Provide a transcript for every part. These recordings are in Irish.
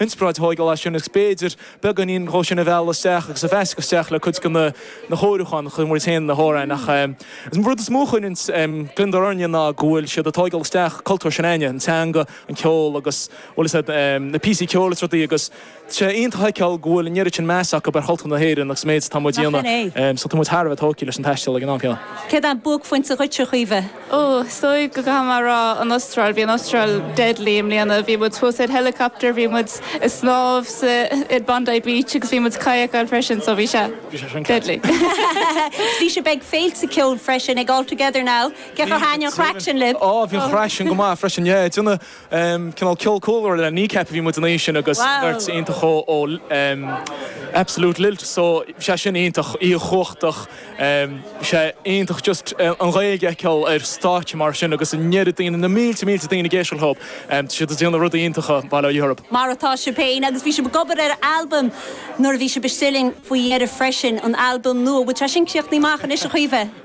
inspioráid a thógáil as sin agus b'fhéidir beagáinín dhó sin a mhealladh isteach agus a mheascadh isteach le cuid de na na cóiriúcháin a chuireann muid féin ar amhráin ach an rud is mó a chuireann gliondar orainne ná go bhfuil siad ag tógáil isteach cultúr s'againne, an teanga, an ceol agus bhfuil a fhios agat na píosaí ceoil is rudaí agus tá sé iontach a fheiceáil go bhfuil an oiread sin meas acu ar chultúr na hÉireann agus an méid atá muid a dhéanamh so tá muid thar a bheith tógtha leis an taisteal ag an am céanna. Céard é an buaicphointe dhuitse, a Chaoimhe? Oh, is dóigh go gcaithfidh mé a rá an Astráil. Bhí an Astráil deadly i mbliana. Bhí muid thuas ar helicopter, bhí muid ag snámh sa, ar Bondi Beach agus bhí muid ag kayakáil freisin so bhí sé deadly. Bhí sibh ag féilte ceoil freisin, ag All Together Now. Cén chaoi ar thaitin an chraic sin libh? Oh, bhí an chraic sin go maith freisin, yeah. Ag déanamh cineál ceol cúlra le Kneecap a bhí muid an oíche sin agus beirt iontach ó Absolute Lilt so bhí sé sin iontach oíche chumhachtach bhí sé iontach just an Ghaeilge a fheiceáil ar stáitse mar sin agus an oiread daoine na mílte mílte daoine ag éisteacht leo tá siad ag déanamh rudaí iontacha bail ó Dhia orthu. Mar atá sibh féin agus bhí sibh ag obair ar albam nuair a bhí sibh istigh linn faoi dheireadh freisin an albam nua bhfuil sé sin críochnaithe amach anois a Chaoimhe?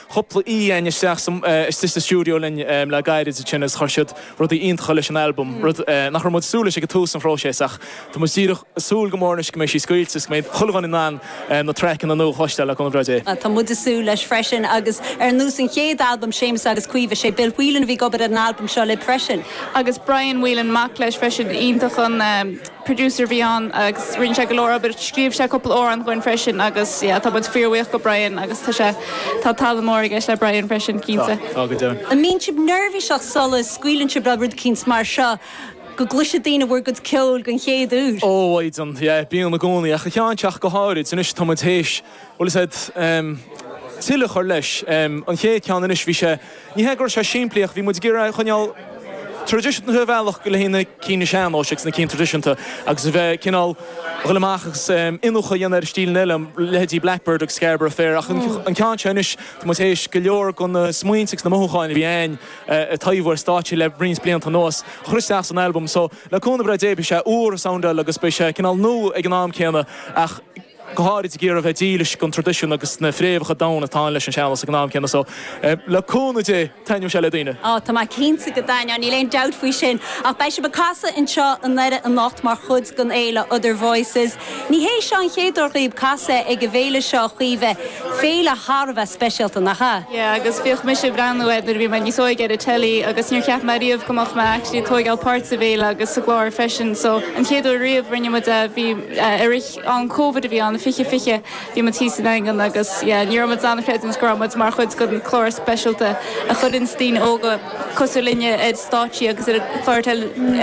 cúpla aíonna isteach sa stiúideo linn le gairid ansin agus chuir siad rudaí iontacha leis an albam, rud nach raibh muid ag súil leis ag tús an phróiseas ach tá muid díreach ag súil go mór anois go mbeidh sí scaoilte agus go mbeidh chuile dhuine in ann na traiceanna nua a chloisteáil le cúnamh breá Dé. Tá muid ag súil leis freisin agus ar nós an chéad albam Séamus agus Caoimhe, sé Bill Whelan a bhí ag obair ar an albam seo libh freisin. Agus Brian Whelan, mac leis freisin, iontach an. producer a bhí ann agus rinne sé go leor obair scríobh sé cúpla amhrán dhúinn freisin agus yeah tá muid fíor bhuíoch do Brian agus tá sé tá tallann mór i gceist le Brian freisin cinnte. Tá, tá go deimhin. An mbíonn sibh neirbhíseach sula scaoileann sibh le rud eicínt mar seo, go gcloisfidh daoine bhur gcuid ceoil den chéad uair? Ó, a Mhaighdean, yeah, bíonn i gcónaí ach an ceann seo go háirid, anois tá muid théis, bhfuil a fhios agat, tuilleadh a chur leis. An chéad cheann anois, bhí sé. Ní hé go raibh sé simplí ach bhí muid ag iarraidh a choinneáil traidisiúnta ar bhealach le leithéidí na cinn sean-nóis agus na cinn traidisiúnta agus a bheith cineál a dhul amach agus iniúchadh a dhéanamh ar stíleanna eile, leithéidí Blackbird agus Scarborough Fair. Ach an ceann seo anois, tá muid tar éis go leor de na smaointe agus na mothúcháin a bhí againn ag taibhiú ar stáitse le roinnt blianta anuas a chur isteach san albam. So, le cúnamh Dé, beidh sé úr, soundáil agus beidh sé cineál nua ag an am céanna ach. go háirid ag iarraidh a bheith dílis don traidisiún agus na fréamhacha domhain atá ann leis an sean-nós ag an am céanna so le cúnamh Dé taitneoidh sé le daoine. Ó, tá mé cinnte go dtaitneoidh, níl aon dabht faoi sin. Ach beidh sibh ag casadh anseo i nDoire anocht mar chuid den fhéile Other Voices. Ní hé seo an chéad uair dhaoibh casadh ag an bhféile seo, a Chaoimhe, féile thar a bheith speisialta, nach ea? Yeah, agus bhíodh mise ag breathnú air nuair a bhí mé níos óige ar an telly agus níor cheap mé riamh go mbeadh mé actually ag tóigeáil páirt sa bhféile agus sa gclár freisin so an chéad uair riamh rinne muid é, bhí, eh, ar a. an Covid a bhí ann, 2020, bhí muid thíos sa nDaingean agus yeah ní raibh muid in ann a chreidiúint go raibh muid mar chuid den chlár speisialta a chuireanns daoine óga cosúil linne ar stáitsí agus ar chláir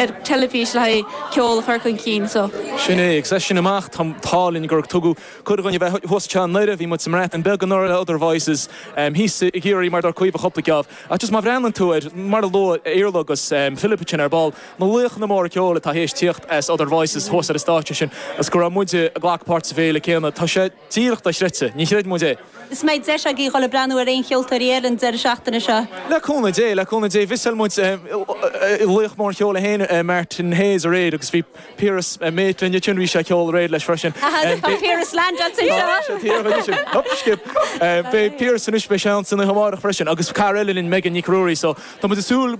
ar teilifís le haghaidh ceol a chur chun cinn so. Sin é, agus as sin amach tá an t-ádh linn gur tugadh cuireadh dhuinn a bheith thuas anseo i nDoire, bhí muid sa mBreatain Bheag anuraidh le Other Voices, em thíos i gCiarraí mar a dúirt Caoimhe cúpla geábh ach just má bhreathnaíonn tú ar mar a luadh Iarla agus em Philip ansin ar ball, na laochra móra ceoil atá théis tíocht as Other Voices thuas ar an stáitse sin agus go raibh muide ag glacadh páirt sa bhféile céanna. Tá sé díreach dochreidte. Ní chreideann muid é. An mbeidh deis agaibh dhul ag breathnú ar aon cheoltóirí eile an deireadh seachtaine seo. Le cúnamh Dé, le cúnamh Dé. Mhiss muid laoch mór an cheoil ansin Martin Hayes aréir agus bhí Piaras Ó Lorcáin ansin, bhí sé ag ceol aréir leis freisin. Aha, tá Piaras le bheith anseo. Beidh Piaras anois, beidh sé ansin amárach freisin agus cara eile linn, Megan Nic Ruairí, so tá muid ag súil,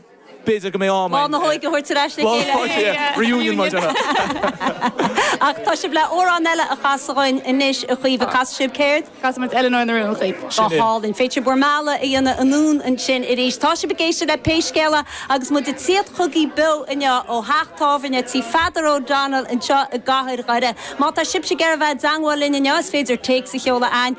b'fhéidir go mbeidh am ann é. Reunion mar deir Ach tá sibh le amhrán eile a chasadh dhúinn anois a Chaoimhe casfaidh sibh céard? Casfaidh muid Eleanor na Rún. Go hálainn is féidir bhur mbealach a dhéanamh anonn ansin arís. Tá sibh ag éisteacht le Pé Scéal É agus muid ag tíocht chugaibh beo inniu ó theach tábhairne tí Pheadar O'Donnell anseo i gcathair Dhoire. Má tá sibhse ag iarraidh a bheith i dteangmháil linn inniu is féidir téacs a sheoladh againn.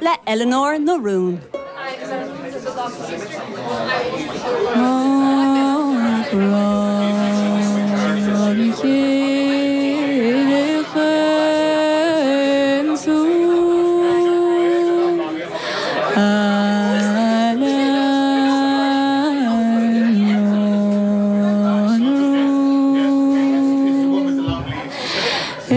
le Eleanor na Rún. Ach ran chéile chan sú Alan Rún.